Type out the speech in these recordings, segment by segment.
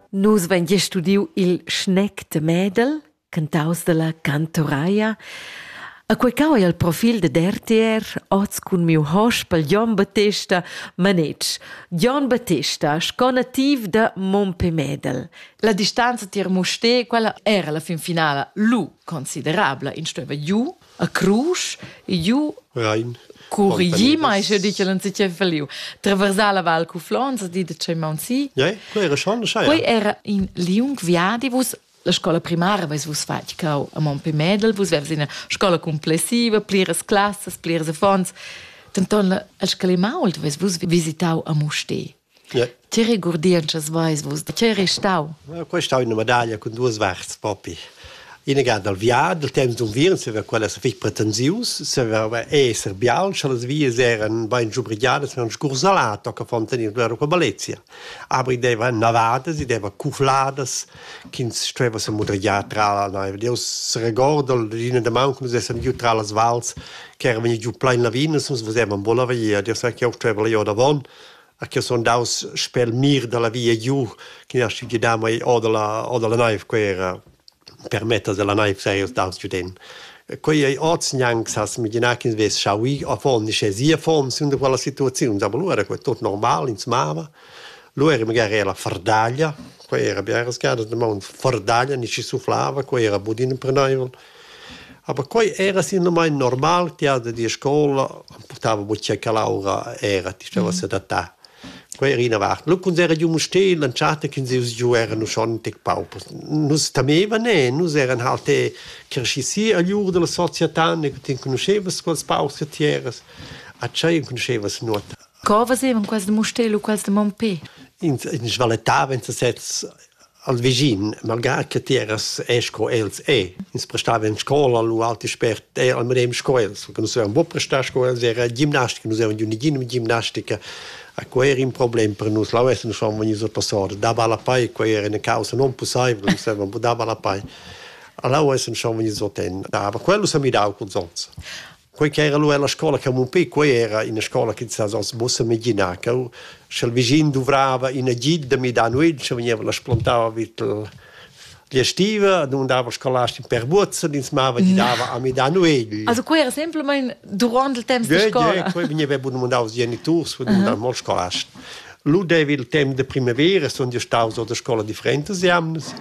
Nus vein gia studiu il schnec de Medel, cantaus dalla cantoraia. A quei cau ei il profil ded RTR oz cun miu hospel Jon Battesta Manetsch. Jon Battesta, sco nativ da Mompé Medel. La distanza tier Musté, quella era la fin finala lu considerabla. Ins stueva giu a crusch iu Rein. Curigi mai sche dice l'on si che feliu. Traversar la val cu Flons di de che Mount Si. Ja, quei era schon schai. Quei era in liung viadi vus la scola primaria vais vus fatg cau a Monpe Medel, vus vers ina scola complessiva, pliras classas, pliras affons. Denton la el scalimau, vus vus visitau a Muste. Ti regurdientschas veis vus, da tgei ei stau? Quei ei stau ina medaglia cun duas varts propi. Ina ga dal viadi, dal temps d'unviern, se quella sa fich pretensius, se va esser bial, scha las vias eran bain giubrigiadas, eran scursalato che fon tenir loro qua Balezia. Aber i deva navadas, i deva cufladas, ch'ins stueva se mudrigiar tra la naiv. Io s'regordel d'ina damaun che nus essem giu tra las vals, che era vegni giu plain lavinas, nus vesevan buca la via, io sai che io stueva io davon, a che sun daus sper il mir dalla via giu che ha aschi gidà mei o dalla o dalla naiv quei era per mettas dalla naiv sei os daus giu den. Quei ei oz gnanc sas imaginar ch'ins vess schauì avon ni sche sia fom sin da quella situaziun, aber lu era quei tot normal, ins mava. Lu era magari era la fardaglia, quei era biaras gadas da maun fardaglia, ni schi suflava, quei era budin imprenaivel. Aber quei era sinamain normal tiada dir scola, portava buca calaura, era ti stava sedatar. Quei era ina vart. Lu cuns era giu Mustér l'entschatta che nus giu eran uschon tec paupers. Nus temevan e nus eran halt e cresci si agl ur della società, ne ti conoscevas quels paurs che ti eras. A tschei conoscevas nuota. Co facevan quels de Mustér u quels de Mompé? Ins, ins valetavan sesez al vischin, malgrà che ti eras e sco els e, ins prestava en scola, lu alti spert, e al medem sco els, perché nus avevamo prestar sco els, era gimnastica, nus avevamo unigin gimnastica, a quei era in problem per nus, la vessimo schon vegnius a passare, dava la pei, quei era una causa non possibile, nus avevamo dava la pei. Alla vessimo schon vegnius a ten, dava, quello s'ha midau col zons. quei ch'era lu ella scola Camupé, quei era ina scola che sa oz mussa immaginar che sch'el vischin duvrava in agid da midar nuit, sche vegniva la splantava vid l'estiva, non dava scolasti per buozza, ins mava gidava a midar nuegl. Also quei era semplamein durant il temps de scola. Ja, quei vegniva bun mandau als geniturs, bun mandau mal scolast. Lu devi il temps de primavera, sono io staus a scola differentas jamnas.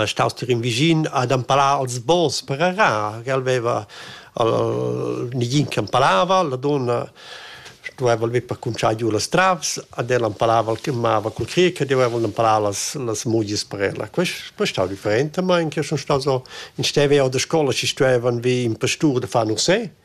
staus tier in vischin ad empalar als bons per arar, che el veva al negin che empalava, la donna stueva el per cunciar giu las travs, ad el empalava el che mava cul cric, ed eu avevo empalar las las mugies per ella. Quest quest stau different, ma in che sun staus o in steva jau da scola chi stuevan vi in pastur da far no sé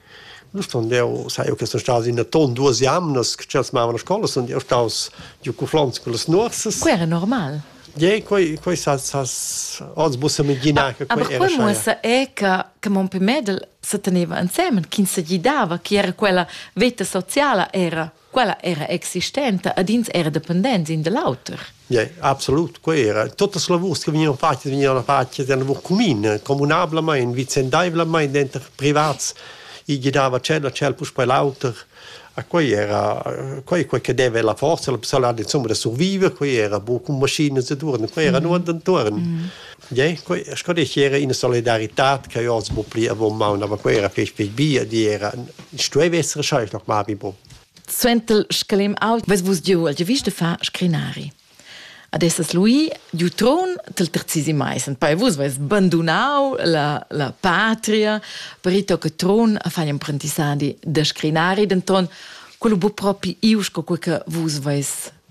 Nu sun eu sai eu che sun staus in aton duos jamnas che tschels mavan a scoula sun eu staus giu cuflants cullas nuorsas. Quai era normal. Ie, quai quai s'has s'has oz muossa menginar che quai era. Aber quai muossa è che che mon pè Mädel se teneva insemen, ch'ins se gidava, chi era quella veta sociala era. quella era existenta ed ins era dependents in da l'auter. Yeah, absolut, quella era. Tutte le lavors che venivano fatte venivano fatte da lavor comune, comunablement, vicendaivlement dentro privats, i girava cielo ciel puspei l'auter. A quei era quei quei che deve la forza la possibilità insomma da survivere, quei era buca con maschine e durn, quei era mm. nur den turn. Mm. Ie, quei sco dici era ina solidaritad che io oz bu pli avon maun, aber quei era fetg fetg bia, di era, stueva essere scheisch noch mal wie bo. Suenter scalem ault ves vus giu al giavisch de far scrinari. Ad esses lui giu tron del terzisi mais, und poi vus veis bandunau la, la patria per ir toc a tron a far imprendissadi de scrinari, denton quello bu propi iu sco quei che vus veis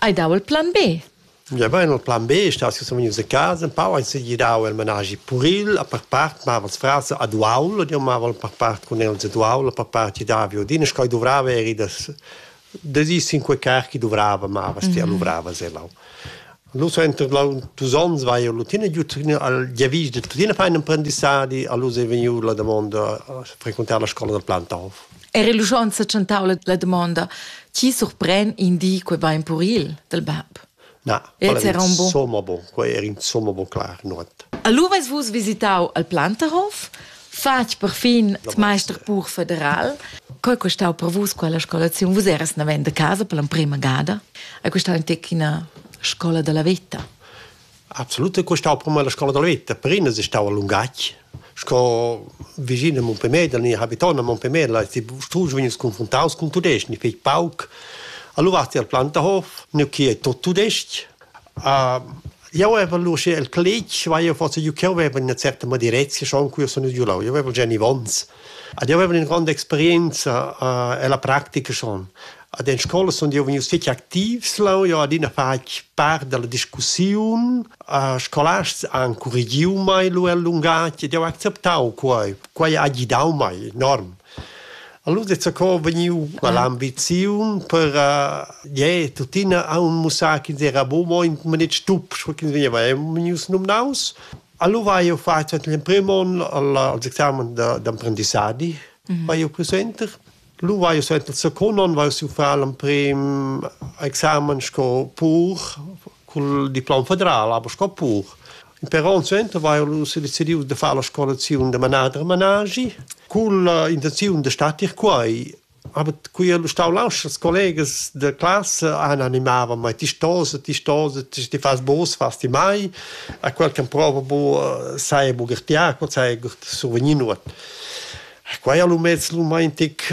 Hai dau il plan B? Ja vain il plan B, stas sun vegnius a casa, pau han segir dau il managi puril, a per part mava'ls frars ad uaul, io mava per part cun els ad uaul, a per part i davi odin, e sco i duvrava eri da da dis in quei car chi duvrava mavas, ti luvravas e lau. Lu so entro dus ons vai io tuttina giu al giavisch de tuttina fai un apprendissadi, allura è vegniu la damonda a frequentare la scuola da Plantov. Era l'uschon sa tschentau la damonda, chi surpren in di quei va in puril del bab? Na, quella era insomma bon, quei era insomma bon clar, nuot. Allura eis vus visitau al Plantahof, fatg per fin meister pur federal. Coi costau per vus quella scolaziun? Vus eras naven de casa per l'emprema gada? Hai costau in tec ina scola della vita? Absolut è stau per me la scola da veta, per ina è stau a lungatg. Sco vicin a Montpellier, da habiton a Montpellier, la ti strusch vegnis confrontaus cun tudestg, ni fetg pauc. Allora vas ti al Planterhof, nu che è tot tudestg. Uh, io avevo luce il plec, vai io forse io che avevo una certa madirezia schon qui sono giù là, io avevo Jenny Vons. Ad io avevan ün gronda experienza uh, ella practica schon. Ad in scola sun io vegnius fich activs leu, io adina fatg part dalla discussiun. Uh, scolasts han currigiu mei lu el lungatg ed io ho acceptau quei. Quei ha gidau mei enorm. Allura è co vegniu l'ambiziun per uh, yeah, tuttina a un mussar ch'ins era buca mo in manet stup, sco ch'ins vegniva, è vegnius nominaus. Allura hai jeu fatg l'emprim onn il examen d'emprendissadi vai jeu più suenter. Lu vai jeu suenter il secund onn vai jeu far l'emprim examen sco pur cul diplom federal, aber sco pur. In per onn suenter vai jeu sedecidiu da far la scolaziun da manader e managi cun l'intenziun da statir quei. Aber qui han stau lauscher collegas da classa han animava mei ti stos ti stos ti ti fas bos fas ti mai a quel che prova bu sai bu gertiar co sai survenir nuot quai al umets lumaintic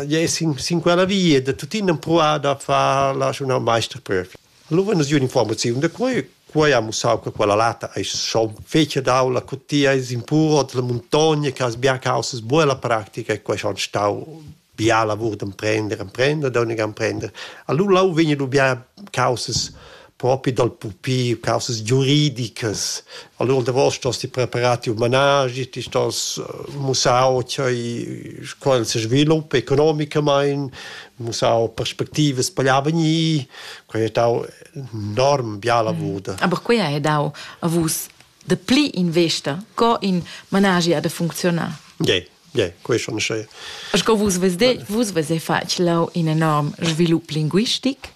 yes in sin quella via da tutin han pruà da far la schon al meister prüf Allura es gnüda infuormaziun da quai. Quai ha mussau che quella lata ais schon fece daula co ti ais in pur della muntogna che has bia causas buona pratica e quai ha stau bia lavur d'emprender, emprender, d'ögniga emprender. Allura lou vegni dubia causas propi dal pupi, causas giuridicas. Allura davos stos ti preparar tiu managi, ti stos mussau ch'ei quel se sviluppa economicamaing, mussau perspectivas per gli avegnir, quei ha dau enorm bia lavur. Mm. Aber quei ha dau a vus de pli investa co in managia de funczionar. Yeah. Yeah, quei schon schön. Sco vus vese, vus vese fatg lau in enorm svilup linguistic.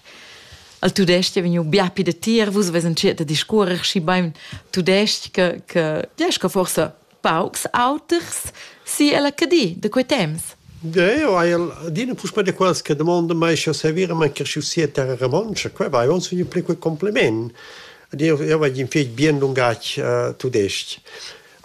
Al tudesc è vegnu bia pi de tir, vus vesen cirta discurrer schi bein tudesc che, che, ja, sco forse paucs auters si ella Cadi da quei temps? Eu hai adina puspè da quels che domandan mai sche servir a man cresciu sia terra romontscha. Quai vai, eu sun pli quel compliment. Ed eu, eu vagl in fich bien lungatg uh, tudesc-ch.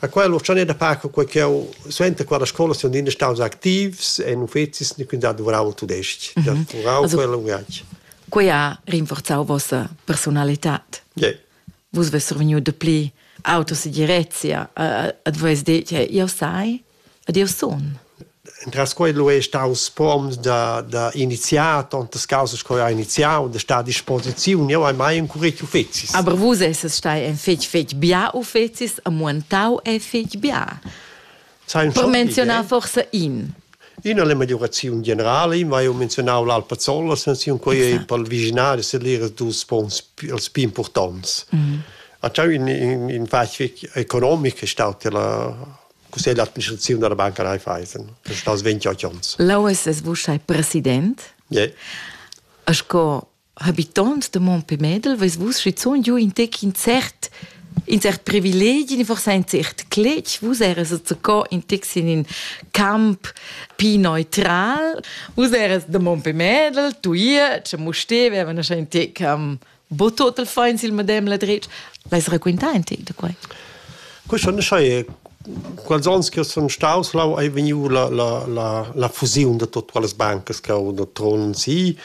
A quello c'han è da paco quei che eu sento qua la scola sun adina staus activs e in uffecis ne quindi duvrau il tudesc, mm -hmm. da furau also, quel lungatg. Quei ha rinforzau vossa personalità. Yeah. vus vess survegniu dapli auto segirezia ad vus detg io sai ed io sun Entras quei lu ei staus pom da, da iniziar tontas causas che ha iniziau, da star a disposiziun. Jeu hai mai encurich uffecis. Aber vus esses stai en fetg fetg bia uffecis e muentau ei fetg bia. Per menziunar forsa in. Ina la meglioraziun generala, ma io menzionavo l'Alpazzolla, sanziun quei è per il visionari se lira dus spons els più importants. Mm. A c'è in, in, in facit economico è stata la così l'administrazione della Banca Raiffeisen, che sta 28 anni. Laues es vus sei president? Yeah. A sco habitants de Montpelmedel, vus vus schizun giu in tec in cert in cert privilegi, forse ein cert cletg, vus eres co in tec in in camp pi neutral, vus eres de Montpelmedel, tu hier, che mu steveva, na schein tec um, bo total feins il medem la dretg, vais raquintar ein tec de quei? Questo ne sai quals ans che sono staus là hai vegniu la la la la fusione de tutte le banche che ho de Tron sì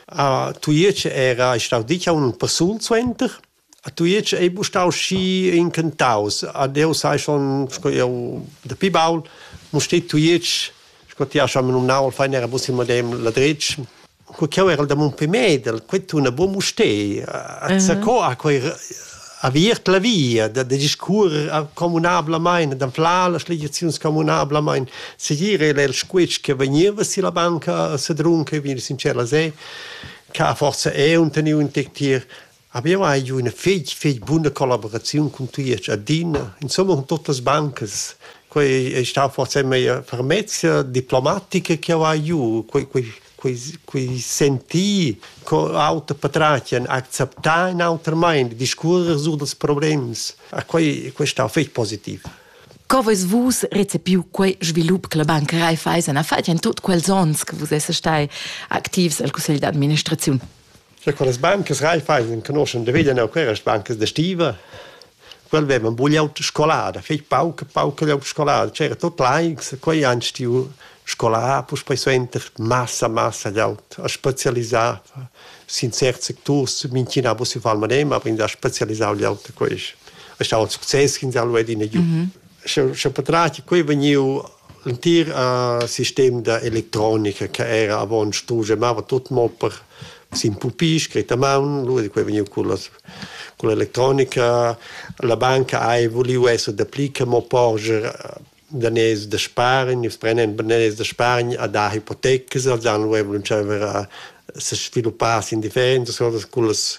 A Tujetsch era ei stau ditg aunc ün persun suenter. A Tujetsch ei bu stau schi incantaus. Ad eu sai schon, sco eu dapi baul, mo steht Tujetsch, sco ti hast schon numnau, il fein era bus il medem ladretsch. Cu ch'eu erel da Mumpé Medel, quei tuna buca Mustei. Zacò ha quei aviert la via da, da discurrer communablamain, d'anflar las legiaziuns communablamain, segir era il squitsch che vegniva si la banca a Sedrun, che vegni sincer la se, che forza è un teniu in tier, abbiamo hai giù una fig, fig buona collaborazione con tuiac adina, insomma con tutte le banche, quei è stato forse mia fermezza diplomatica che ho hai giù, quei, quei quei, quei sentir co auter patratgen acceptar in auter mind discurrer su dels problems a quei questa ha fetg positiv Co veis vus recepiu quei svilup che la Banca Raiffeisen ha fatg en tot quels onns che vus esses stai activs al Cussegl d'administraziun? Scha quellas bancas Raiffeisen enconoschan da veglia neu quellas bancas da stiva, quel vevan buca auta scolada, fetg pauca, pauca auta scolada, c'era tut laics, quei han stiu scolà puspei suenter massa, massa gl'aut, ha specialisà sin certs secturs, mintgina vus il fal madem, aber ins ha specialisau gl'aut a quest. È stau ün success ch'ins ha lu adina giu. Scha scha patrat quei vegniu L'entir sistem da electronica che era avon strusch e mava tut mo per sin pupì scret a maun, lura quei vegniu cullas culla electronica. La banca hai vuliu esser dapli che mo porscher daners da spargn, nus prendem daners da spargn a dar hipotecas, als han lura vulentschaver a sesviluppar sin differentas cosas cullas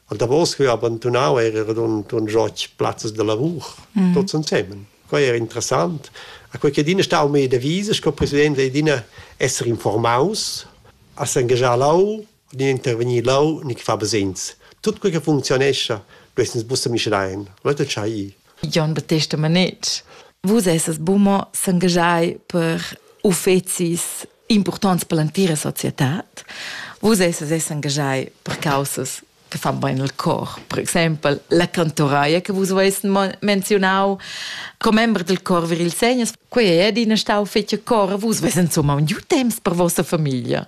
Und da vos vi ha abandonau era radund un joch plazzas de lavur, mm. tots ensemen. Quei era interessant. A quei che Dina stau me devise, sco president de Dina esser informaus, a s'engagiar lau, ni intervenir lau, ni fa besins. Tut quei che funzionescha, du essens busse mischlein. Leute chai. Jon Battista Manetsch, vus esses bummer s'engagiai per uffecis impurtonts per l'entira societad. Vus esses engagei per causas che fan bene il cor. Per exempel la cantoraia che vus avais menzionau, commember del cor vir il segnes, quei è adina stau fetg cor, vus veis insomma un giu temps per vostra famiglia.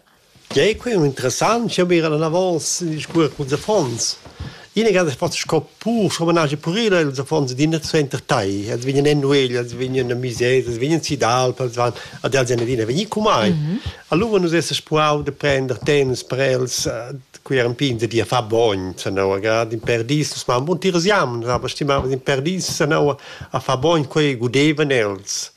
Ja, è qui interessant, ich habe gerade davos gesprochen mit den Fonds. Ina grada fa sco pur, sco manage purila, ils affons d'in suenter tai. Els vegnan en nuegl, els vegnan a mises, els vegnan si d'alp, els van ad els en adina vegni cu mai. Allura nus esses puau de prender temps per els, qui eran pin de dir fa bogn, sanaua grad in perdis, nus mam bun tiras jam, aber stimavan in perdis, sanaua a fa bogn, quei gudevan els.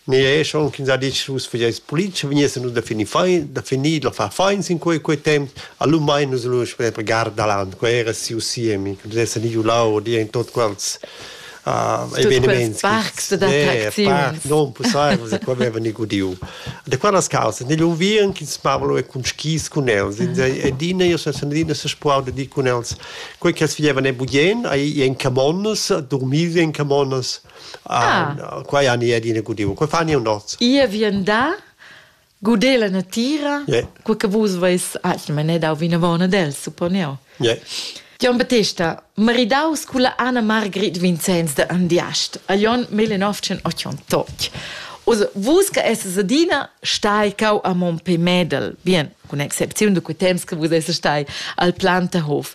Mi è schon ch'ins ha ditg vus fageis politica, vegnissen nus da finir fein, da finir da far feins in quei quei temps, allura mein nus lu sper per Gardaland, quei era siu siemi, che nus essan iu là o dir in tot quels eveniments parcs ed attracziuns. Non possibile, da qua aveva ni gudiu. Da qua las causes, negli unviern che smavalo e con skis con els, ed ina io sono andina se spuau da di con els, quei che els fagevan e bugien, ai in camonnas, dormir in camonnas, Ah. Qua ja ni adina gudivo. Qua fani un noz. Ia vien da guder la natira, yeah. co che vus veis atg manedau vinavon ad el, supponeo. Yeah. Jon Battista, maridaus cu la Anna-Margrit Vincenz de Andiast, a Jon 1988. Uso, vus che esses adina stai cau a Montpellier Medel, bien, con excepziun de quei temps che vus esses stai al Plantahof.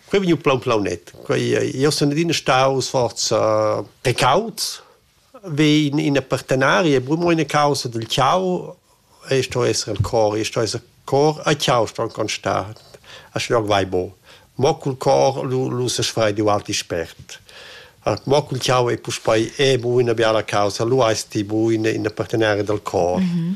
Quei vegniu plan plaunet. Quei, io sun adina staus forza precaut, vi in, in partenaria, brumo ina causa del ciao, e sto essere il cor, e sto essere cor, a ciao sto ancon sta, a schnog vai bo. Mo cul cor lu, lu se sfrei di alti spert. Mo cul ciao e puspei è bu una biala causa, lu esti bu in, in partenaria del cor. Mm -hmm.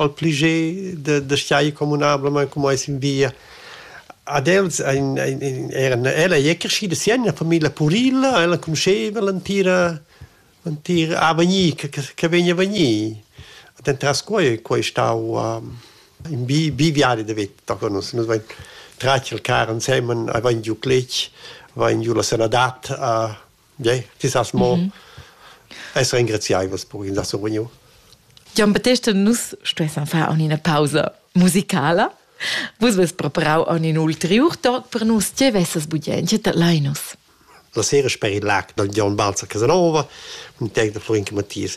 al pleiger da, da stai communablament com ais in via. Ad els ein, ein, ein eran ella ei crescida si en una famiglia purilla, ella conosceva l'entira l'entira avegnir che, che vegna vegnir. Dentras quei quei stau um, in bi, bi viadi de vita con nus nus vein tratg il car ensemen, avein giu cletg, avein giu la sanadat a Ja, ti sas mo mm -hmm. essere engraziaivos per in da sovegno. Gian Battesta, nus stuessan far una pausa musicala. Vus vest preparau un ulterior talk per nus, tge vesses budien, tge Linus? La sera per il lac del Gian Balzer Casanova, un tec de Florin Mattias.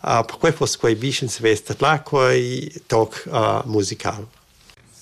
Ah, perquei fuss quei bugen svess tadlar quei toc musical.